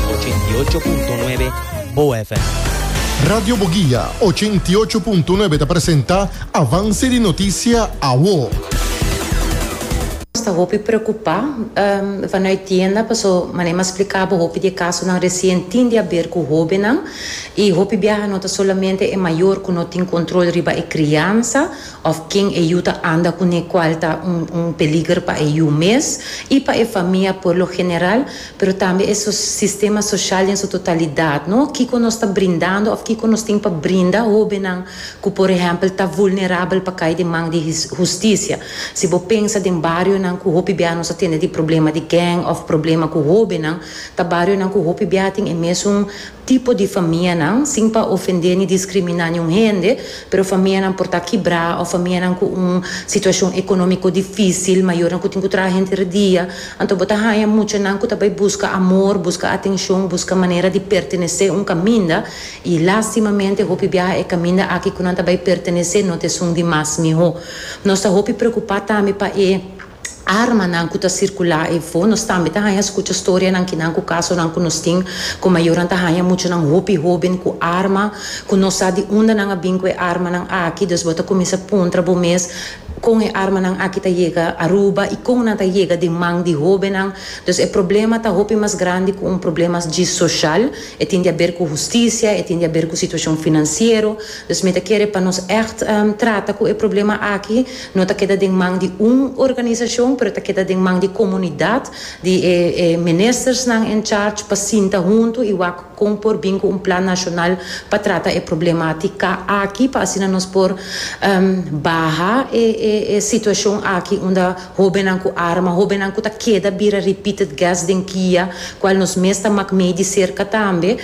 88.9 Bo FM. Radio Boguia, 88.9 ta presenta Avance di Noticia Awo. Nos ta hopi preocupa vanuit tienda paso manera mas splica bo hopi di e casonan recien tin di haber cu hobennan y hopi biaha no ta solamente e mayor cu no tin control riba e criansa òf ken e yu ta anda kuné kual ta un un peliger pa e yu mes i pa e famia por lo general, pero tambe e so sistema soshal den su totalidat, no? Kiko nos ta brindando òf kiko nos tin pa brinda hóbennan ku por ehèmpel ta vulnerabel pa kai den man di his hustisia? Si bo pensa den barionan ku hopi bia nos a tende di problema di gèng òf problema ku hóbennan, ta barionan ku hopi bia tin e mesun tipo di famianan, sin pa ofendé ni diskriminá niun hende, pero famianan por ta kibrá òf famianan ku un situashon ekonómiko difísil, mayornan ku tin ku traha henter e dia. Anto bo ta haña mucha nan ku ta bai buska amor, buska atenshon, buska manera di pertenesé un kaminda, i lástimamente hopi biaha e kaminda aki ku nan ta bai pertenesé no ta esun di mas mihó. Nos ta hopi preokupá tambe pa e. armanan ku ta sirkulá efo. Nos tambe ta haña skucha storianan kinan ku kasonan ku nos tin ku mayornan ta haña muchanan hopi hóben ku arma ku no sa di unda nan a bin ku e armanan aki. Dus bo ta kuminsá puntra bo mes, Kon e armanan aki ta yega Aruba i kon nan ta yega den man di hóbennan? Dus e problema ta hopi mas grandi ku un problema djis soshal. E tin di aber ku hustisia, e tin di aber ku situashon finansiero. Dus mi ta kere pa nos ègt trata ku e problema aki. No ta keda den man di un organisashon, pero ta keda den man di komunidat, di e e ministersnan en charge pa sinta huntu i wak kon por bin ku un plan nashonal pa trata e problematika aki pa asina nos por baha e e e situashon aki unda hóbennan ku arma, hóbennan ku ta keda bira repeated guest den kia, kual nos mes ta mak mei di serka tambe.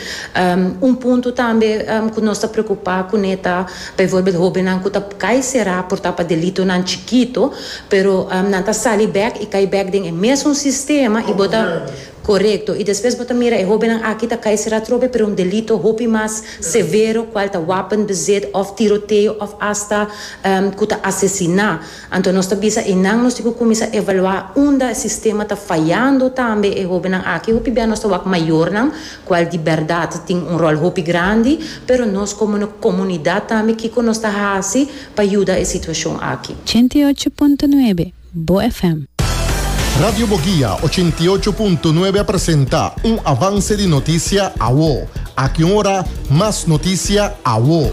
Un punto tambe ku nos ta preokupá kuné ta. Bijvoorbeeld hóbennan ku ta kai será por ta pa delitonan chikito, pero nan ta sali bèk i kai bèk den e mesun sistema i bo ta, korekto, i despues bo ta mira e hóbennan aki ta kai será trobe pero un delito hopi mas severo kual ta wapenbezit òf tiroteo òf asta ku ta asesiná. Anto nos ta bisa enan nos tin cu cuminsa evalua unda e sistema ta fayando tambe e hobennan aki hopi bia nos ta wak mayornan cual di berdad tin un rol hopi grandi pero nos como no comunidad tambe kico nos ta haci pa yuda e situacion aki. Ochenta i ocho punto nuebe Bo FM. Radio Boguia ochenta i ocho punto nuebe a presenta un avance di noticia awo. Aki un ora mas noticia awo.